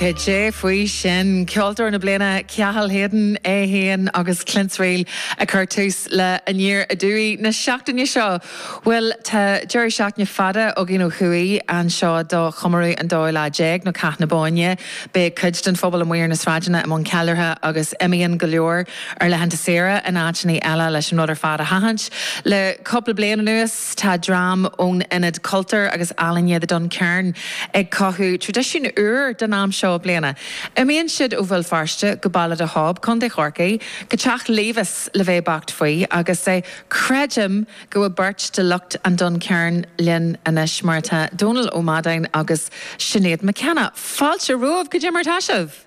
Cad é faoi sin? Ceoltóir na Bliana, Cathal Hayden é féin agus Clann Suibhne ag cur tús le Aniar Aduaidh na seachtaine seo. Bhuel, tá deireadh seachtaine fada againn ó thuaidh anseo do chomóradh an 12ú lá, nó Cath na Bóinne. Beidh cuid den phobal amuigh ar na sráideanna i mbun ceiliúrtha agus imíonn go leor ar laethanta saoire in áiteanna eile leis an rud ar fad a sheachaint. Le cúpla bliain anuas. Tá dream ón Ionad Cultúir agus Ealaíne, The Duncairn, ag cothú traidisiún úr don am seo bliana. Imíonn siad ó Bhéal Feirste go Béal an Dá Chab, Co. Chorcaí, go teach Levis le bheith beacht faoi, agus creidim go bhfuil beirt de lucht an Duncairn linn anois, mar atá, Dónal Ó Madáin agus Sinéad McKenna. Fáilte romhaibh, cad é mar atá sibh!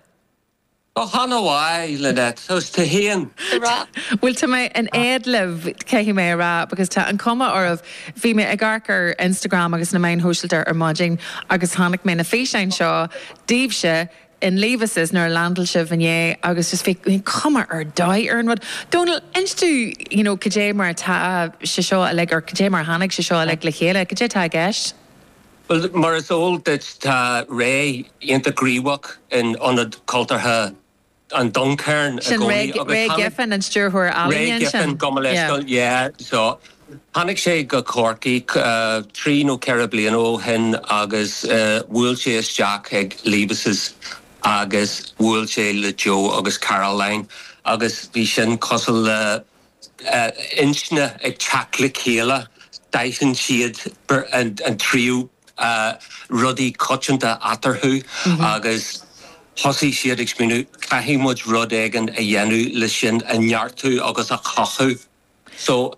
Go hana mhaith, Lynette. Tá os t-héan le rá. Bhuel, tá mé in éad libh, caithfidh mé a rá, because tá an-chuma oraibh. Bhí mé ag amharc ar Instagram agus na meáin shóisialta ar maidin agus chonaic mé na físeáin seo daoibhse in Levis' nuair a landáil sibh inné agus just bhí cuma ar dóigh ar an rud. Dónall, inis dúinn you know cad é mar atá sé seo uilig or cad é mar a tháinig sé seo uilig le chéile, cad é atá i gceist? Bhuel, mar is eol duit, tá Ray iontach gníomhach in Ionad Cultúrtha an Duncairn i gcónaí Sin Ray, Ray Giffen, an stiúrthóir ealaíne ansin. Ray Giffen, gabh mo leithscéal, yeah, so, tháinig sé go Corcaigh trí nó ceithre bliana ó shin agus bhuail sé isteach chuig Levis' agus bhuail sé le Joe agus Caroline agus bhí sin cosúil le, intinní ag teacht le chéile, d'aithin siad an-chuid rudaí coitianta eatarthu agus thosaigh siad ag smaoineamh, caithfidh muid rud éigin a dhéanamh le sin a neartú agus a chothú. So,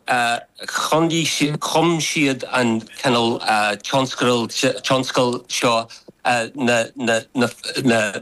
chum siad an cineál tionscadal seo na.